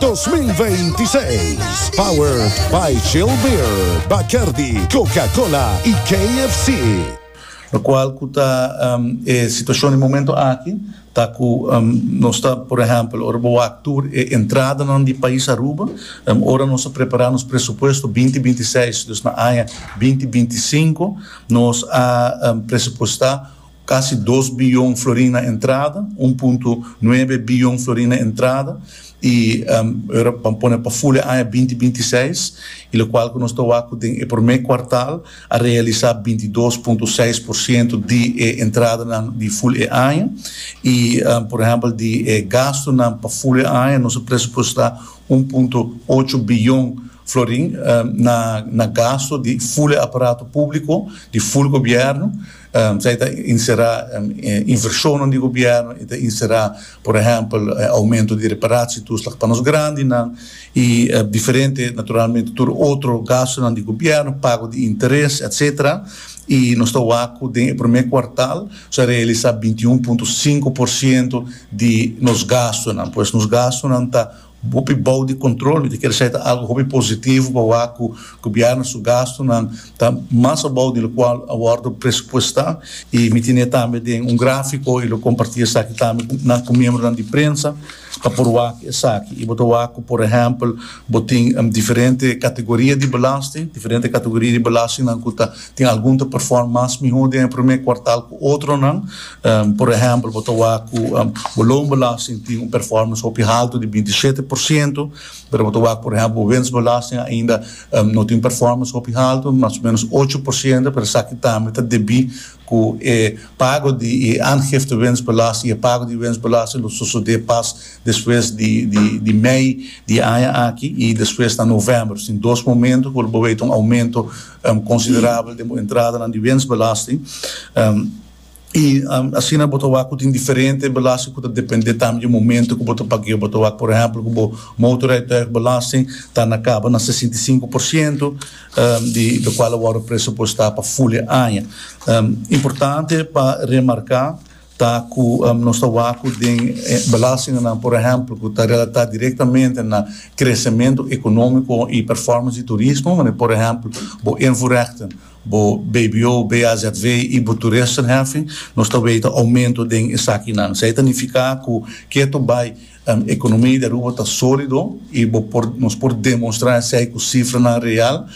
2026. Powered by Chill Beer, Bacardi, Coca-Cola y KFC. Locual cu ta e situacion di momento aki ta cu nos ta, por ehempel, ora bo wak tur e entradanan di pais Aruba, ora nos a prepara nos presupuesto binti binti seis, dus na aña binti binti sinku, nos a presupuesta Kasi dos biyon florin na entrada, un punto nuebe biyon florin na entrada, i ora ban pone pa ful e aña binti binti i seis, i lokual ku nos ta wak ku den e promé kuartal a realisá binti dos punto seis por siento di e entradanan di ful e aña. I por ehèmpel di e gastunan pa ful e aña nos a presupuestá un punto ocho biyon florin na gastu di ful e aparato públiko, di ful gobièrnu, Esei ta inserá invershonnan di gobièrnu i ta inserá, por ehèmpel, oumentu di reparashi i tuslach pa nos grandinan i diferente, naturalmente, tur otro gastunan di gobièrnu, pago di interes, etsetera. I nos ta wak ku den e promé kuartal nos a realisá binti un punto sinku por siento di nos gastunan. Pues nos gastunan ta. Hopi bou di control, mi ta kere saita algo hopi positivo pa wak cu Gobierno su gastonan ta mas abou di locual a wordo presupuesta y mi tine tambe den un grafico y lo comparti esaki tambe cu nan cu miembronan di prensa pa por wak esaki y bo ta wak cu por ehempel bo tin diferente categoria di belasting, diferente categoria di belastingnan cu ta. Tin algun ta perform mas mihó den e promé kuartal ku otronan. Por ehèmpel, bo ta wak ku bo loonbelasting tin un performance hopi haltu di binti shete por siento, pero bo ta wak por ehèmpel bo wensbelasting ainda no tin performance hopi haltu, mas o ménos ocho por siento, pero esaki tambe ta debí ku e pago di e aangifte wensbelasting i e pago di wensbelasting lo sosodé pas despues di mei di e aña aki i despues na novèmber. Tin dos momentu ku lo bo wei ta un oumento. considerabel den bo entradanan di wensbelasting y asina bo ta wak cu tin diferente belasting cu ta depende tambe di e momento cu bo ta pagueo, bo ta wak por ehempel cu bo motorrijtuigbelasting ta na caba na sesenta i sinku por ciento di locual a worde presupuesta pa ful e aña. Importante pa remarca. Ta cu nos ta wacu den belastinganan, por ehempel, cu ta relata directamente na crecemento economico y performance di turismo, manera por ehempel bo invoerrechten, bo bbo, BAZV y bo toeristenheffing, nos ta weten aumento den esakinan. Esey ta nifica cu kier to bay economie di Aruba ta solido y bo por nos por demonstra esey cu cifranan real,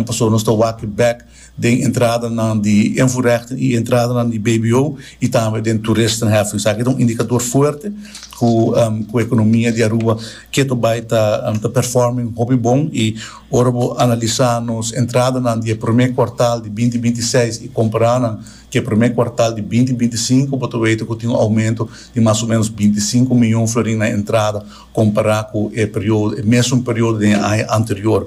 pasobra nos ta wak e bek den entradanan di invoerrechten y entradanan di bbo y tambe den toeristenheffing. Esaki ta un indicador fuerte cu cu economia di Aruba ke to bay ta ta performing hopi bon y ora bo analisa nos entradanan di e prome cuartal di binti binti seis y comparanan cu e prome cuartal di binti binti sinku bo ta wete cu tin un aumento di mas o menos binti sinku mion florin na entrada compara cu e periodo e mesun periodo den e aña anterior.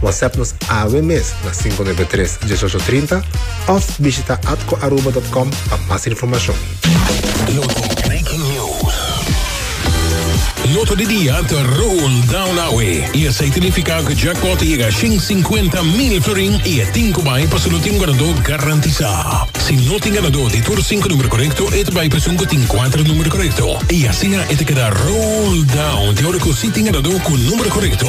WhatsApp nos awe mes na 593 1830 of bishita atcoaruba.com pa mas informacion. Loto Breaking News. Loto di dia ta rol down awe y esey tinifica cu jackpot ta yega shin cincuenta mil florin y e tin cu bay paso no tin ganado garantisa. Si no tin ganado di tur cinco numero corecto e ta bay paso un cu tin cuatro numero corecto y asina e ta keda rol down te ora cu si tin ganado cu numero corecto.